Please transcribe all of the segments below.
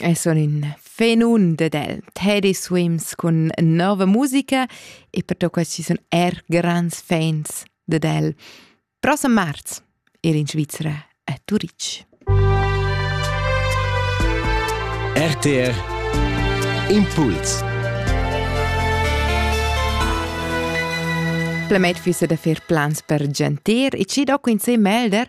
E sun in fenun ded el. Teddy swims cun nova musica e pertocca ci sun er grands fans ded el. Prossem marz ir in Svizzera a Turitg. RTR Impuls Plemet fissa da fer plans per gentir e ci doc in se melder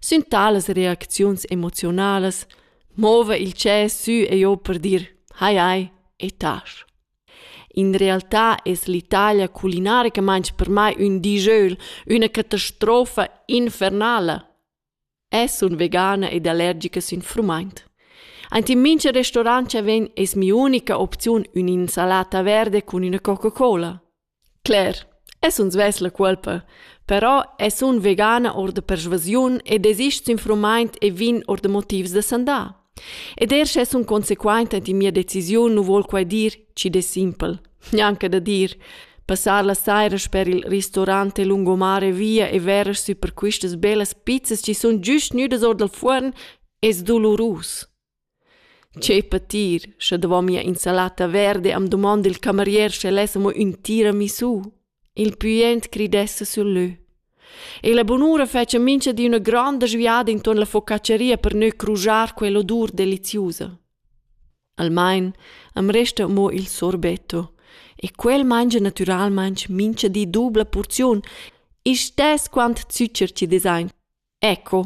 Sün talas reacziuns emoziunalas mova il tschè sü e giò per dir «Hai hai, etasch». In realtà es l'Italia culinaricamaing per mai ün dijeuel, üna catastrofa infernala. Es sun vegana ed allergica sün frumaint. Aint in mincha restaurant cha vegn es mi'unica opziun ün'insalata verde cun üna Coca-Cola. Cler, es uns vess la cuolpa, però es un vegana our da persvasiun e desist s'infurmaint e vegn our da motivs da sandà. Ed eir sche sun consequaint ant in mia decisiun nu voul quai dir chi'd es simpel, gnanca da dir. Passar la saira sper il ristorant e lungomare via e verer sü per quistas bellas pizzas chi sun güst gnüdas our dal fuorn es dolurus. Tgei patir, sche davon mia insalata verda e am dumond il camerier sche less amo ün tira missu. Il püent cridessa sül lö. E la bunura fetscha mincha di üna gronda sviada intuorn la focacceria per gnür crusar quell'odur deliziusa. Almain am resta amo il sorbetto e quel mangia natüralmaing mincha di dubla purziun, istess quant zucher chi desain. Ecco!